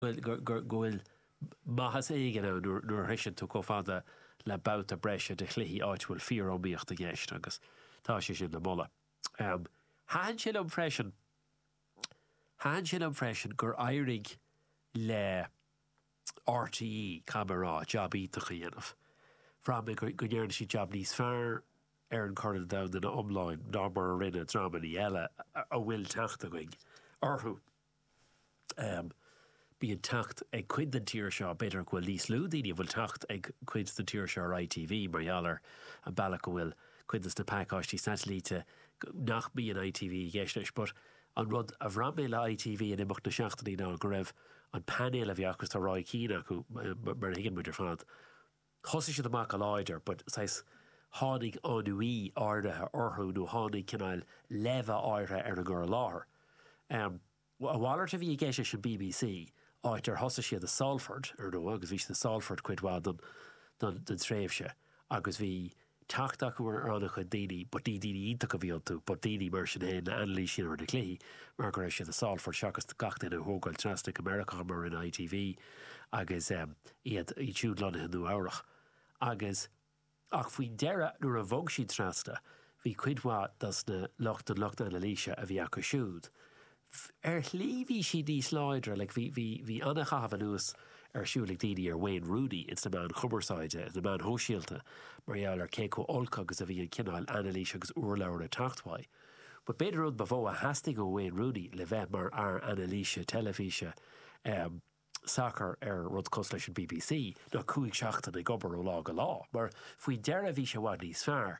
bhfuil, go, go, go bhfuil maitheas éigin ann nuair, nuair a shroicheann tú chomh fada le babhta breise de chluichí áit a bhfuil fíor-iomaíocht i gceist agus tá sé sin le moladh. Thaitin sé liom freisin, thaitin sé liom freisin gur éirigh le RTÉ, caithfidh mé a rá, jab iontach a dhéanamh. Bhraith mé go, go ndearna siad jab níos fearr ar an gCorn Domhanda ina iomláine ná mar a rinne dreamannaí eile a bhfuil teacht againn orthu. Bíonn teacht ag cuid den tír seo, b'fhéidir go bhfuil níos lú daoine a bhfuil teacht ag cuid den tír seo ar ITV mar gheall ar an bealach go bhfuil cuid de na pacáistí satailíte nach mbíonn ITV i gceist leis but an rud a bhraith mé le ITV in imeacht na seachtainí ná go raibh an painéal a bhí acu, tá Roy Keane acu mar a thuigeann muid ar fad. Thosaigh siad amach go láidir but saghas tháinig ennui áirithe orthu nó tháinig cineál leimhe áirithe ar an gcur i láthair. A mhalairt a bhí i gceist leis an bbc, áit ar thosaigh siad i Salford, ar ndóigh, agus bhí siad i Salford cuid mhaith den tréimhse agus bhí, teacht acu ar ana chuid daoine but ní daoine iontacha a bhí iontu but daoine mar sin fhéin le anailís ar na cluichí mar go raibh siad i Salford seachas gach duine a thógáil trasna go Meiriceá mar a rinne ITV agus ehm iad siúd lonnaithe i Nua Eabhrach agus ach faoin deireadh nuair a bhog siad trasna bhí cuid mhaith dos na lucht an lucht anailíse a bhí acu siúd Ar shlí bhí siad níos láidre, like bhí, bhí, bhí an-chaitheamh anuas ar siúl ag daoine ar Wayne Rooney ins na meáin chumarsáide, ins na meáin shóisialta mar gheall ar cé chomh olc agus a bhí an cineál anailís agus urlabhra ag teacht uaidh. But b'fhéidir an rud ba mhó a theastaigh ó Wayne Rooney le bheith mar fhear anailíse teilifíse, eh, sacar ar rud cosúil leis an bbc ná cúig seachtaine ag obair ó lá go lá mar faoi deireadh bhí sé i bhfad níos fearr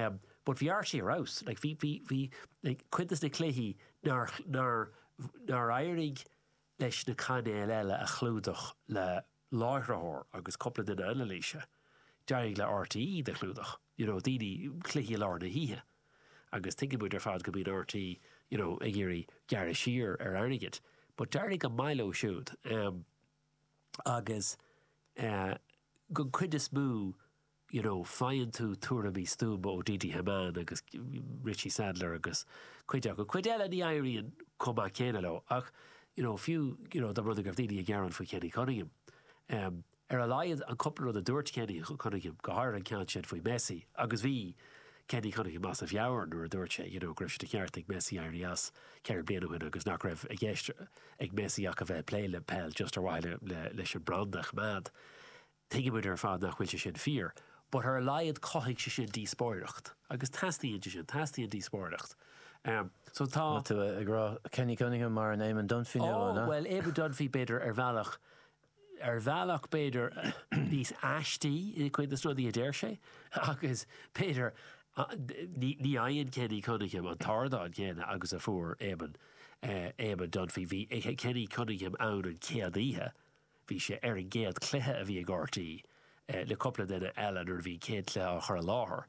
em but bhí RTÉ abhus like bhí bhí bhí like cuid de na cluichí nár nár nár éirigh leis na cainéil eile a chlúdach le láithritheoir agus cúpla duine anailíse d'éirigh le RTÉ iad a chlúdach you know daoine cluichí i lár na hoíche agus tuigeann muid ar fad go mbíonn RTÉ you know ag iarraidh gearradh siar ar airgead but d'éirigh go maith leo siúd em agus eh don chuid is mó you know faigheann tú tuairimí stuama ó Didi Hamann agus Richie Sadlier agus cuid acu, cuid eile ní éiríonn chomh maith céanna leo ach you know fiú you know dá mba rud go raibh daoine ag gearán faoi Kenny Cunningham em Ar a laghad, an cupla rud a dúirt Kenny Cunningham, go háirithe an ceann sin faoi Messi, agus bhí Kenny Cunningham as a mheabhair nuair a dúirt sé, you know, go raibh sé de cheart ag Messi éirí as ceithre bliana ó shin agus nach raibh i gceist ag Messi ach a bheith ag plé le peil just ar mhaithe leis an branda a choimeád. Tuigimid ar fad nach bhfuil sé sin fíor but ar a laghad chothaigh sé sin díospóireacht agus teastaíonn sé sin, teastaíonn díospóireacht. So tá. Tá tú ag rá Kenny Cunningham mar an Éamon Dunphy nua, an ea? Oh, bhuel, Éamon Dunphy b'fhéidir ar bhealach ar bhealach b'fhéidir níos aistí i gcuid de na rudaí a deir sé agus b'fhéidir ní fhaigheann Kenny Cunningham an t-ardán céanna agus a fuair Éamonn, Éamonn Dunphy. Bhí Kenny Cunningham ann an chéad oíche, bhí sé ar an gcéad cluiche a bhí ag rte le cúpla duine eile nuair a bhí an chéad chluiche á chur i láthair.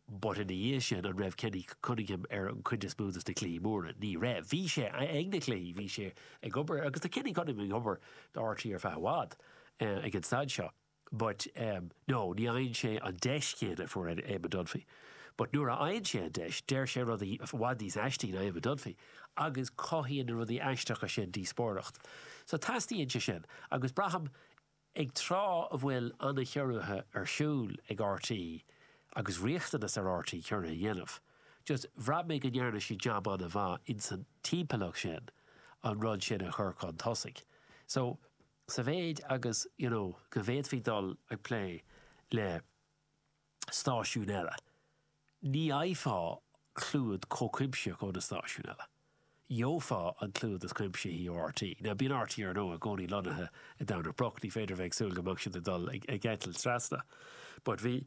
But ina dhiaidh sin, an raibh Kenny Cunningham ar an gcuid is mó dos na cluichí móra? Ní raibh. Bhí sé ag na cluichí, bhí sé ag obair agus tá Kenny Cunningham ag obair do rte ar feadh i bhfad ag an staid seo but no, ní fhaigheann sé an deis chéanna a fuair Eamon Dunphy. But nuair a fhaigheann sé an deis, deir sé rudaí i bhfad níos aistí ná Eamon Dunphy agus cothaíonn na rudaí aisteacha sin díospóireacht. So teastaíonn sé sin agus braithim, Ag tráth a bhfuil an-chiorruithe ar siúl ag RTÉ agus riachtanas ar RTÉ ciorruithe a dhéanamh, just bhraith mé go ndearna siad jab an-mhaith insan timpeallacht sin an rud sin a chur chun tosaigh. So, sa mhéid agus, you know, go bhféadfaí dul ag plé le, stáisiúin eile. Ní fhaighfeá clúad chomh cuimsitheach ó na stáisiúin eile. Gheofá an clúad is cuimsithí ó RTÉ. Now bíonn RTÉ ar ndóigh i gcónaí lonnaithe i Domhnach Broc, ní féidir a bheith ag súil go mbeadh siad ag dul ag eitilt trasna. But bhí,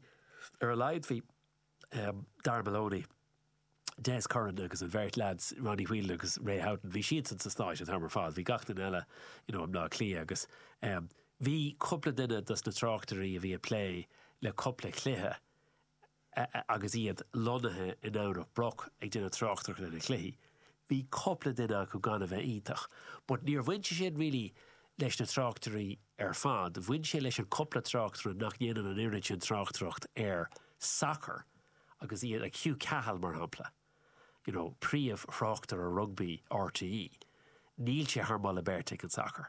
ar a laghad bhí Darragh Maloney, Des Curran agus an bheirt leads, Ronnie Whelan agus Ray Houghton, bhí siadsan sna Stáit an t-am ar fad, bhí gach duine eile you know i mBleá Cliath agus em bhí cúpla duine dos na tráchtairí a bhí ag plé le cúpla cluiche eh agus iad lonnaithe i nDomhnach Broc ag déanamh tráchtaireacht ar na cluichí, bhí cúpla duine acu gan a bheith iontach but níor bhain sé sin really leis na tráchtairí ar fad, bhain sé leis an cúpla tráchtaire nach ndéanann an oiread sin tráchtaireacht ar sacar. agus iad ag Hugh Cahill mar shampla, you know, príomhthráchtaire rugbaí rte, níl sé thar moladh beirte ag an sacar.